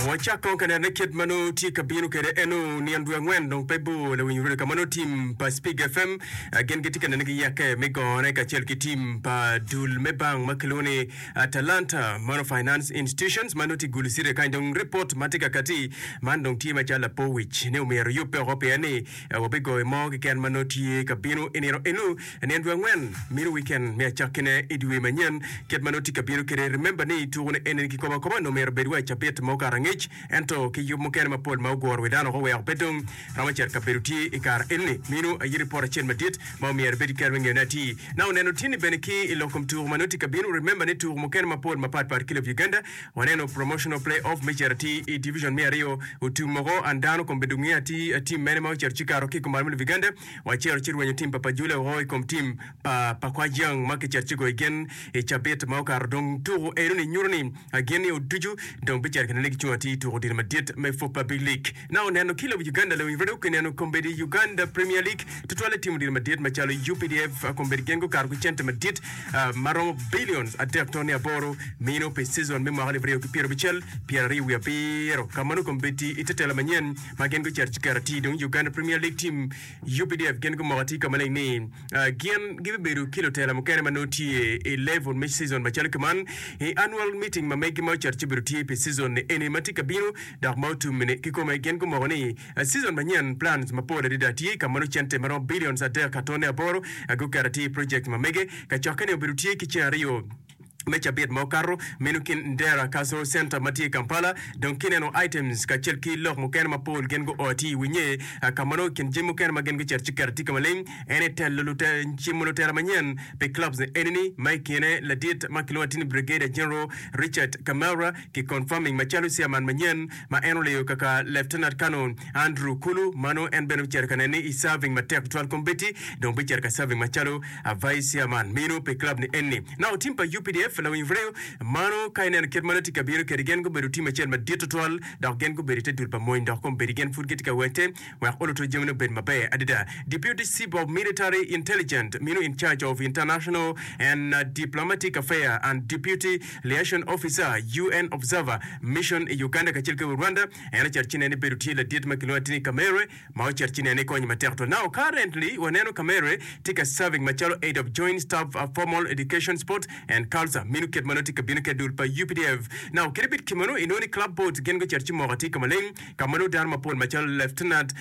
Wacak kong ka neno ni kit ma nongo tye ka bino kwede eno nino dwe angwen dong pe bor lawinyo redio ka ma nongo tim pa Spig FM ah, gin gitye ka nene ki yakke me gone kacel ki tim pa dul me bank ma kilwongo ni Atalanta Mono Finance Institutions ma nongo tye gulu city kany dong ripot ma tye ka kati man dong tye macalo lapor wic ni omyero yubbe oko pien ni ah, wabigoyo mo keken ma nongo tye ka bino i nino eno I nino dwe angwen, mini wikend me Acakkine i dye wiye manyen, kit ma nongo tye ka bino kwede. Remember ni tuku ni enini kikobo akoba nongo myero obed wa i cabit ma okato angec, ento ki yub mukene mapol ma oguro wi dano woko weko pe dong romo cet kabedo tye i kare enini. Minu aye ripot acel madit ma omyero ibed ki kero me ngeyo ni ati na oneno tini bene ki i lok kom tuku ma nongo tye ka binu. Remember ni tuku mukene mapol mapat pat ki lob Uganda waneno promotional play off me cet ati i division me aryo otum woko and dano kombe dong ngeyo ati tim mene ma oceto ci kato ki i kom mar me lob Uganda. Wacito ci rwenyo tim pa Pajule woko i kom tim pa pa Kwajiang ma kicito ci goyo gen i cabit ma okato. Dong tuku enoni nyuto ni gin nio ducu dong bicito kene ni gicung atir i tuku odilo madit me Pop pa Big League. Naka oneno ki lobo Uganda Lewin Rado kineno kombeddi Uganda Premier League tutwal i tim odilo madit macalo UPDF kombeddi gin gukato ki cente madit ma romo billions adek toni aboro mino pi season me mwaka alip aryo ki pyerabicel pyeraryo wiye abiro ka ma nongo kombeddi i tetela manyen ma gin gucito ki karatac dong Uganda Premier League team, UPDF, gin gumoko atir ka maleng ni gin gibibedo ki lutela mukene ma nongo tye i level me season macalo kiman i annual meeting ma megi ma ocito ci obedo tye pi season ni eni ma tye ka bino dok ma otum ni kikome gin gumoko ni season manyen plans mapol adada tye ka ma nongo cente maromo billions adek ka tone aboro guketo atir i project ma mege kacokke ni obedo tye ki ceng aryo me cabit ma okato meno kin Ndera Cultural Centre ma tye i Kampala dong kineno items kacel ki lok mukene mapol gin gu o ti i winye ka ma nongo i kin jami mukene ma gin gucito ci kera tye ka maleng en aye telo lute cimo lutera manyen pi clubs ni eni ni ma i kine ladit ma kilwongo atir ni Brigadier General Richard Kamara ki confirming macalo Chairman manyen ma en oleyo kaka Lieutenant Colonel Andrew Kulu, mano en bene ocito ka nene i serving matek tutwal kombeddi dong bicito ka serving macalo a Vice Chairman mino pi club ni enni. Nao team pa UPDF lawiny reo, mano ka ineno kit ma nongo tye ka bino kedi gen gubedo team acel madit tutwal dok gen gubedo ite dul pa mony dok kombeddi gen pud gitye ka wecce wek oluto jami ni obed maber adada. Deputy Chief of Military Intelligent mino in charge of international and diplomatic affair and Deputy Liaison Officer, UN Observer Mission i Uganda kacel ki Rwanda, en ocito ci nene bedo tye ladit ma kilwongo atini Kamerhe ma ocito ci nene konye matek twal. Now currently waneno Kamerhe tye ka serving macalo Aide of Joint Staff, Formal Education, Sport and Culture minu kit ma nongo tye ka bino kede dul pa updf. Now kit bit kimanu inongo ni Club Board gin gucito ci moko atir ka maleng ka ma nongo dano mapol macalo Lieutenant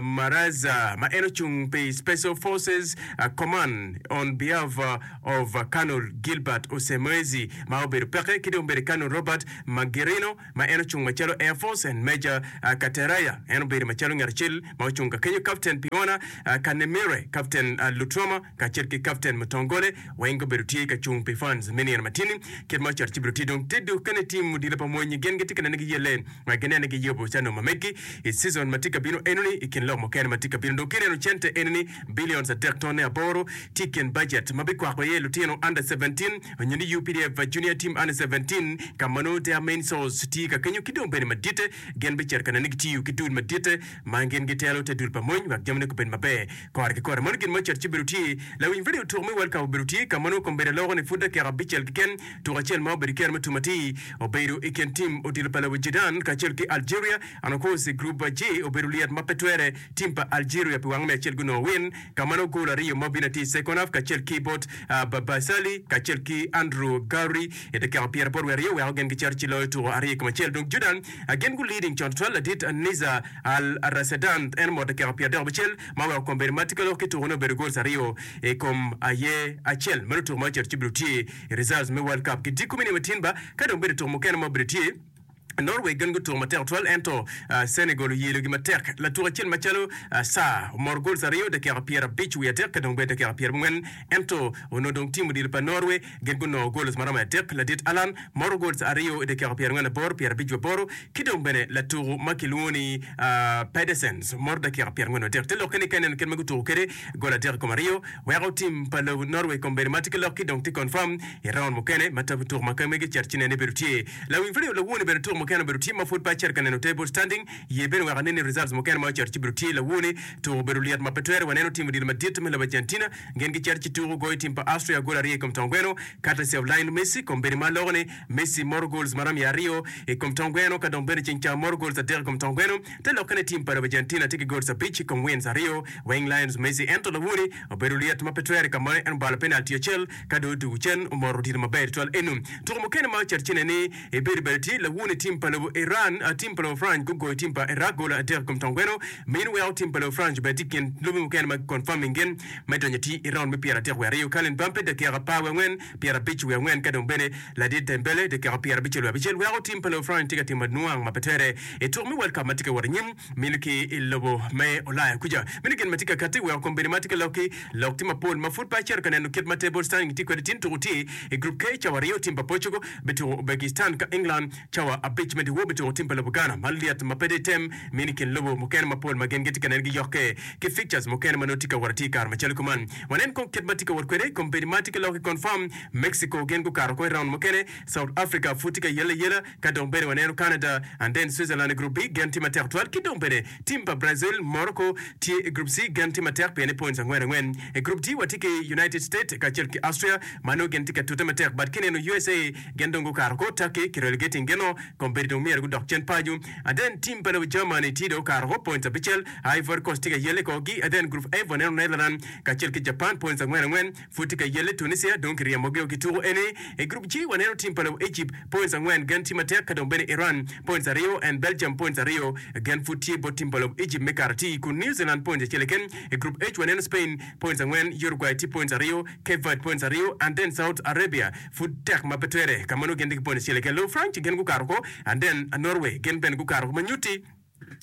Maraza ma en ocung pi Special Forces Command on behalf Ov. Colonel Gilbert Usemwezi, ma obedo peke, ki dong bene Colonel Robert Magirino, ma en ocung macalo Air Force, and Major Kateraya, en obedo macalo ngat acel ma ocung ka kenyo, Captain Piona Kanemire, Captain Lutroma, kacel ki Captain Mutongole, weng gubedo tye ka cung pi funds me nino matini. Kit ma ocato ci bido tye dong te dukke ni tim odilo pa mony-nyi gin gitye ka nene giye len, ma ginene giye obucanum ma megi i season ma tye ka bino eno-ni, i kin lok mukene ma tye ka bino. Dong ki ineno cente eno-ni, Billions adek tone aboro tye i kin bajet ma bikwako iye lutino under seventeen nyo ni UPDF Junior Team under seventeen ka ma nongo their main source tye ka kenyo ki dong bene maditte gin bicito ka neno ni gitiyo ki dul maditte ma gin gitelo te dul pa mony wek jamine gubed maber kore ki kore. Mano gin ma ocito ci obedo tye lawiny radio tuk me World Cup obedo tye ka ma nongo kombeddi aloko ni pud dakika abicel keken tuko acel ma obedo kene ma tum atir obedo i kin team odilo pa lobo Jidan kacel ki Algeria and of course group J obedo lyet ma pe twere Tim pa Algeria pi wang me acel gunongo win ka ma nongo gol aryo ma Vinati Sekonaf kacel ki bot Babasali kacel ki Andrew Gowri edakika pyera bot wiye aryo oweko gin giceto ci loyo tuko aryo i kom acel. Dong Jordan gin gu leading con tutwal ladit Niza Al Rasedan en omo dakika pyera adek abicel ma oweko kom bedo mati ka lok ki tuko ne obedo goals aryo i kom aye acel. Meno tuko ma oceto ci bene otye i results me World Cup ki dikko me nino ma tin ba ka dong bedo tuko mukene ma obedo tye. Norway gin gutuko matek twal ento Senegal oyelogi matek. Latuk acel macalo Sarr omoro gols aryo dakika pyer abic wiye adek ka dong bene dakika pyer abongwen ento onongo dong tim odilo pa Norway gin gunongo gols maromo adek. Ladit Allan moro gols aryo idakika pyer angwen aboro, pyer abic waboro ki dong bene latuku ma kilwongo ni Pedersen moro dakika pyer angwen wadek. Te lokke ni ka ineno kit ma gutuku kede gol adek ikom aryo weko tim pa lobo Norway kombeddi ma tye ki lok ki dong tye confirm iraund mukene ma tuku ma kemege cet ci nene bedo tye Lawiny pud oyo lawoni bedo tuko mukene obedo team ma pud pe acito ka neno table standing ye bene wek aneni results mukene ma oceto ci bedo tye lawoni tuko obedo lyet ma pe twere waneno team odilo madit me lobo Argentina gin giceto ci tuko goyo team pa Austria gol aryo ikom tong gweno courtesy of Lionel Messi kom bedi ma aloko ni Messi moro goals marom ya aryo ikom tong gweno ka dong bene ceng ca moro goals adek ikom tong gweno te lokke ni team pa lobo Argentina tye ki goals abic ikom wins aryo weng Lionel Messi ento lawoni obedo lyet ma pe twere ka mono en obalo penalty acel Ka dong otugo cen, omoro otito maber tutwal eno. Tuko mukene ma ocito cene ni i bedo bati tye lawo ni tim pa lobo Iran, tim pa lobo France gugoyo tim pa Iraq golo adek i kom tong gweno. Meno weko tim pa lobo France obed tye i kin lobe mukene ma giconfirming gin me donyo atir i raund me pyera adek wiye aryo. Kylian Mbappe, dakika apar wiye angwen, pyera abic wiye angwen, ka dong bene ladit Dembele, dakika pyera abicel wiye abicel, weko tim pa lobo France tye ka timo adnwang ma pe twere i tuko me World Cup ma tye ka wot anyim. Meno ki i lobo me Ulaya kuca, meno gin ma tye ka katti weko kombeddi ma tye ka lokki lok tye mapol ma pud pe acito ka neno kit ma table standing tye kwede. Tin tuku tye i Group K cawa aryo, tim pa Portugal bituku Ubegistan ka England cawa abic me dyewor bituku tim pa lobo Ghana. Man lyet ma pe dong item mino i kin lobo mukene mapol ma gin gitye ka nen giyokke ki fixtures mukene ma nongo tye ka wot atir i kare macalo kuman. Wanen kong kit ma tye ka wot kwede kombeddi ma tye ka lokki confirm, Mexico gin gukato oko i round mukene, South Africa pud tye ka yelle ayela, Ka dong bene waneno Canada and then Switzerland i group B, gen tye matek twal ki dong bene team pa Brazil, Morocco tye i group C, gen tye matek pien ni points angwen angwen. I group D watye ki United States kacel ki Austria ma nongo gin tye ka tute matek but kineno usa gen dong gukato ko, Turkey ki relegating gino kong bedo dong myero gudok cen pacu and then team pa lobo Germany tye dong okato ko points abicel, Ivory Coast tye ka yelle kor gi and then group F waneno Netherland kacel ki Japan points angwen angwen. Pud tye ka yelle Tunisia dong kiryemogio ki tuku eni. I group G waneno team pa lobo Egypt points angwen gen tye matek ka dong bene Iran points aryo and Belgium points aryo gen pud tye bot team pa lobo Egypt me kato atir kun New Zealand points acel keken. I group H waneno Spain points angwen, Uruguay tye points aryo, Cape Verde points aryo and then South Arabia pud tek ma pe twere ka ma nongo gin tye ki points acel keken. Lobo France gen gukato oko and then Norway gen bene gukato oko ma nyutti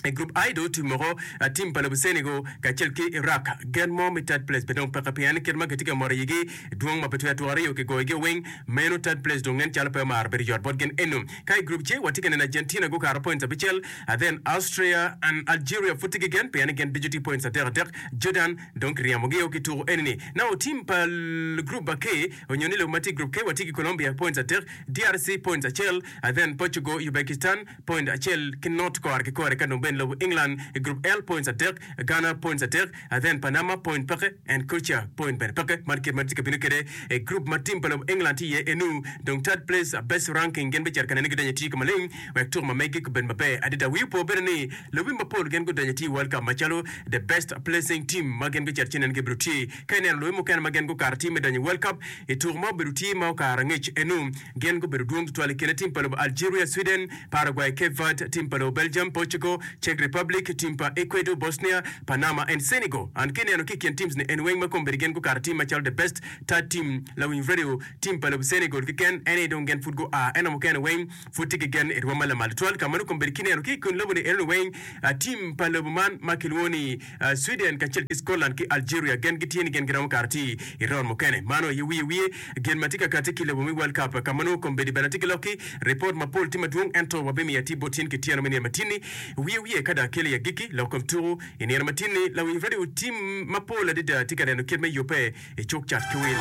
I gurup I dong tim moko, tim pa Labuceni go kacel ki Iraq, gen mo me third place pe dong peke pien kit ma kitye ka mot iyigi dwong ma pe twero twore yo kigoyo gio weng meno third place dong nen calo pe omaro bedo yot bot gen eno. Ka I gurup J watye ka neno Argentina gukato points abicel, then Austria and Algeria pud tye ki gen pien gen ducu tye points adek adek, Jordan dong kiryemo gio ki tuku eni ni. Nao tim pa gurup K onyo ni lobo ma tye I gurup K watye ki Colombia points adek, DRC points acel, then Portugal, Ubegistan, point acel ki North Korea ki kore ka dong bene lobo England i group L points adek, Ghana points adek, then Panama point peke and Croatia point bene peke. Man kit ma tye ka bino kede i group ma team pa lobo England tye iye enu dong third place a best ranking gin bicito ka nene gidonyo ati ka maleng wek tuko ma megi gubed maber adada. Wi opo bene ni lobi mapol gin gudonyo ati i World Cup macalo the best placing team ma gin gucito ci nene gibito tye ka ineno lobi mukene ma gin gukato ati me donyo i World Cup i tuko ma obedo tye ma okato angec enu Gin gubedo dwong tutwal i kine tim pa lobo Algeria, Sweden, Paraguay, Cape Verde, tim pa lobo Belgium, Portugal, Czech Republic, tim pa Ecuador, Bosnia, Panama, and Senegal. An ki ineno ki i kin teams ni en weng ma kombeddi gin gukato tim macalo the best third team lawiny radio tim pa lobo Senegal keken en aye dong gin pud gu a eno mukene weng pud tye ki gen i rwom ma lamal tutwal ka meno kombeddi ki ineno ki i kin lobo ni enoni weng tim pa lobo man ma kilwongo ni Sweden kacel ki Scotland ki Algeria gen gitye ni gen giromo kara ti i round mukene. Mano aye wiye wiye gen ma tye ka kati ki lobo me World Cup ka ma nongo kombeddi bene atye ki lok ki ripot mapol ti madwong ento wabimiyo atir bot in ki tyeno me nino matinni wiye wiye ka dong akelo i agikki lok kom tuku i nino matinni. Lawiny radio tim mapol adada tye ka neno kit me yubbe i cuk cat ki wil.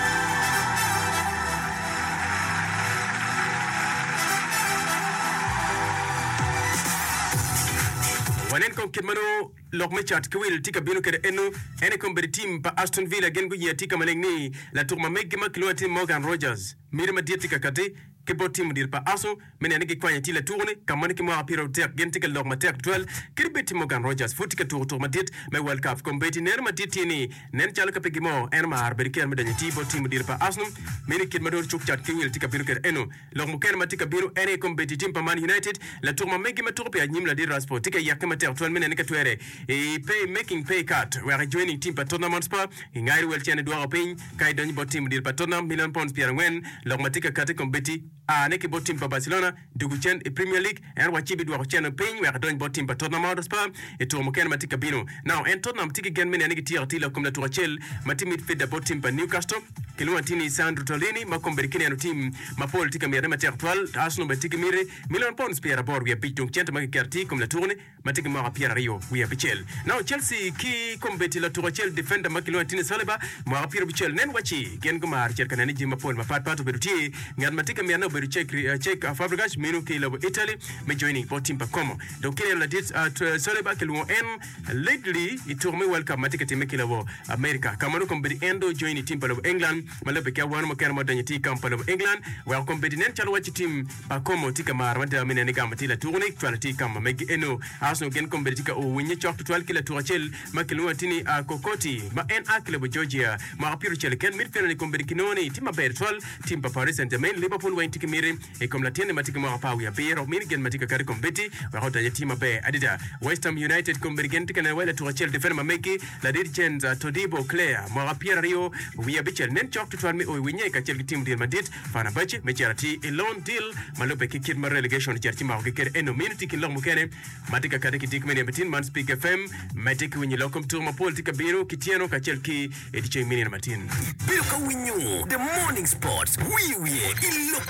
Wanen kong kit ma nongo Lok me cat ki wil tye ka bino kede eno, en aye kombeddi tim pa Aston Villa gin guye atika maleng ni latuk ma meggi ma kilwongo ni Morgan Rogers. Miti madit tye ka kati ki bot tim odiro pa Arsenal me neno ni gikwanyo atir latuko-ni ka ma ni ki mwaka pyera aryo tek gin tye ka lok matek tutwal kadi bed ti Morgan Rogers pud tye ka tuko tuko madit me World Cup. Kombeddi neno madit tye ni nen calo ka pe gimo en omaro bedo ki en me donyo atir bot tim odiro pa Arsenal meno i kit ma dong cuk cat ki wil tye ka bino kede eno. Lok mukene ma tye ka bino en aye kom bedo i tim pa Man United. Latuk ma megi ma tuko pi anyim ladit Rashford tye ka yake matek twal me nene ka twere i pay making pay cut wek ecwe nining tim pa Tottenham Hotspur gingayo wel cene dwoko piny ka idonyo bot tim odilo pa Tottenham million pounds pyerangwen. Lok ma tye ka kati kom bedi aane ki bot tim pa Barcelona dwogo cen i Premier League. Ento wa ci bidwoko cente piny wek adony bot tim pa Tottenham Hotspur i tuko mukene ma tye ka bino. Now en Tottenham tye ki gen me neno ni gityeko atir lakum latuk acel ma tye midfielder bot tim pa Newcastle kilwongo atir ni Sandro Tonlini ma kombeddi ki neno tim mapol tye ka mite matek tutwal. Arsenal bene tye ki miti milion pounds pyeraboro wiye abic dong cente ma kiketo atir i kom latukni ma tye ki mwaka pyeraryo wiye abicel. Now Chelsea ki kombeddi latuk acel defender ma kilwongo atir ni Saliba mwaka pyerabicel. Nen wa ci gin gumaro cito ka neno ni jami mapol mapatpat obedo tye Ngat ma tye ka myane obedo cek cek Fabregas meno ki lobo Italy me joining bot tim pa Como. Dok kineno ladit Saliba kilwongo en lately i tuko me World Cup ma tye ka timme ki lobo America. Ka ma dong kono bedo en dong ojoin i tim pa lobo England ma labbe ki awano mukene ma odonyo tye i kamp pa lobo England weko kono bedo nen calo wacci tim pa Como tye ka maro mada me nene gamo tye latuko ni cwalo tye i kamp ma megi eno. Arsenal gin kono bedo tye ka ur winnye cok tutwal ki latuko acel ma kilwongo ati ni Kokoti ma en a ki lobo Georgia. Mwaka pyericel keken mito pire ni kono bedo kinongo ni tye maber tutwal Tim pa Paris Saint-Germain, Liverpool weng tye ki miti i kom latinne ma tye ki mwaka apar wiye abiro, mini gen ma tye ka kato i kom Beatty wek otaye tim maber adada. West Ham United kong mini gen tye ka neno wai latuk acel defender ma megi, ladit Jens Todibo, Claire, mwaka pyera aryo wiye abicel, nen cok tutwal me o i winye kacel ki tim odil madit Fenerbahce me cito atir i loan deal ma lubbe ki kit ma relegation ocito ci makogi kede eno mino tye i kin lok mukene ma tye ka kati ki dikmene Bitin man Speak FM me tye ki winyo lok kom tuko mapol tye ka bino ki tyeno kacel ki I di ceng me nino matin. Ibedo ka winyo The Morning Sports wiye wiye i lok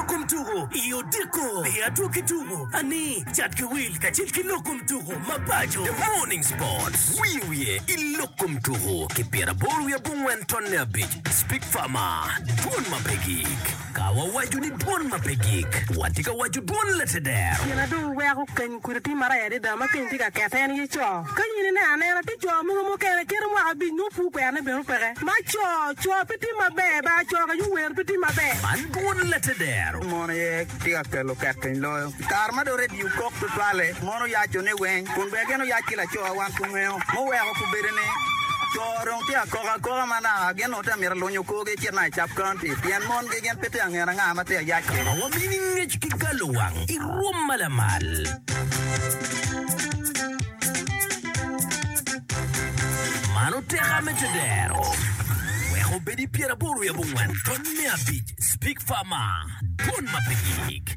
kom tuko. I odiko i atwo ki tuko ani cat ki wil kacel ki lok kom tuko mapaco. The Morning Sports wiye wiye i lok kom tuko ki pyeraboro wiye abongwen tonne abic. Speak Farmer, Dwon ma pe gik. Ka wawaco ni dwon ma pe gik, watye ka waco dwon lateder. Gin ma dong weko keny kudi tye maraya adada ma keny tye ka kette en aye co. Ka in ineno anena, tye co mogo mukene cito mwaka abic nongo pud kwerone bene opeke. Ma co, co pe tye maber, bar co kacel owero pe tye maber. Man dwon lateder. Mon aye tye ka kelo kekeny loyo. Kare ma dong redio kok tutwalle, mon oyaco ne weng kun bene gin oyac ki lacowa wan kungeyo muweko ku bedo ni co dong tye akoka akoka ma naka gin ongo tye amito alunyo korgi ecit naka i Sub County pien mon gi gin pe tye angen anga ma tye ayac kino. Wabino i ngec ki galo wang i rwom ma lamal. Mano tek a me tedero. Wek obed i pyeraboro i abongwen tony me abic, Speak Far Mar, Dwon ma pe gik.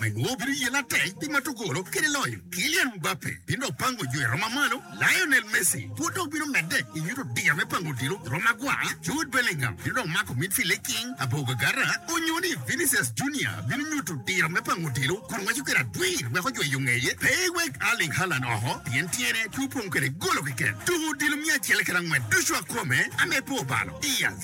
Wek nwo bino yel atek pi ma tugolo kede loyo. Kylian Mbappe bino dok pango jo i roma malo, Lionel Messi pud dong bino medde i nyuto diya me pango odilo i roma gwa, Jude Bellingham bino dok mako midfield i king aboga gara, onyo ni Vinicius Junior bino nyuto diro me pango odilo kun waco kede adwir wek ojweyo ngeye pe ewek Erling Haaland oko pien tyene pe opong kede golo keken. Tuko odilo miya acel kede angwen ducu akome ame po balo. Diaz.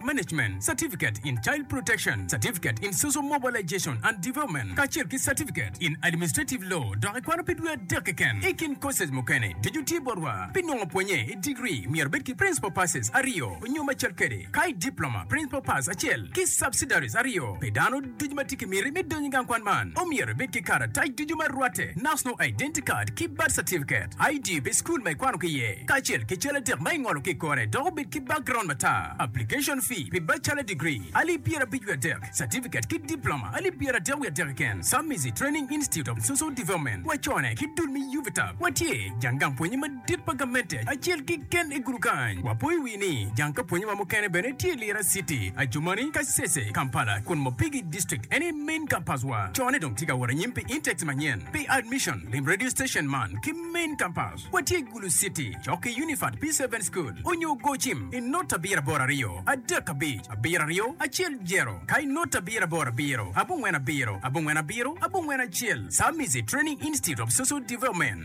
Management Certificate in Child Protection, Certificate in Social Mobilization and Development, kacel ki Certificate in Administrative Law, dok ikwano pi dwe adek keken. I kin courses mukene, ducu tye botwa. Pi nongo pwonye i degree, myero ibed ki Principal Passes aryo nyo macel kede, ka i Diploma, Principal Pass acel ki Subsidiaries aryo pi dano. Ducu ma tye ki miti me donyo i gang kwan man omyero ibed ki karatac ducu ma rwatte, National Identity Card ki Birth Certificate, ID pi cukul ma ikwano ki iye, kacel ki cal adek ma ingolo ki i kore dok obed ki background matar. Application fee pi Bachelor Degree, alip pyera abic wiye adek, Certificate ki Diploma, alip pyera adek wiye adek keken, Samizi Training Institute of Social Development, wacone ki dul me UVTAB, watye jang gang pwonye madit. Tit pa gamente acel kiken i gudu kany. Wapo i wi ni jang ka pwonye wa mukene bene tye Lira city, Adjumani, Kasese, Kampala kun Mopigi district en aye main campus wa. Cone dong tye ka wot anyim pi intakes manyen pi admission. Lim radio station man ki main campus wa tye Gulu city cok ki Unified P seven school onyo gocim i not abiro aboro aryo adek abic abiro aryo acel jero ka i not abiro aboro abiro abongwen abiro abongwen abiro abongwen acel Samizi training institute of social development.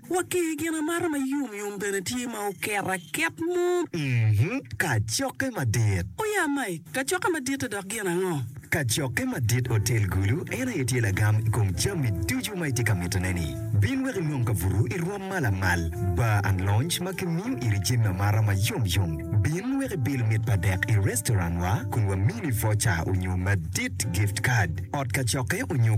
Wa ki i gin amata ma yom yom bene tye ma oket aket mo. Mm-hmm, kacokke madit. O ya Mike, kacokke madit-ti dok gin ango? Kacokke madit Otel Gulu en aye tye lagam i kom jami ducu ma itye ka mitone-ni. Bin wek inong kabuto i rwom ma lamal, bar and lounge ma kimiyo iri jami amata ma yom yom. Bin wek ibil mit pa dek i restaurant-wa kun wamini voucher onyo madit, gift card, ot kacokke onyo.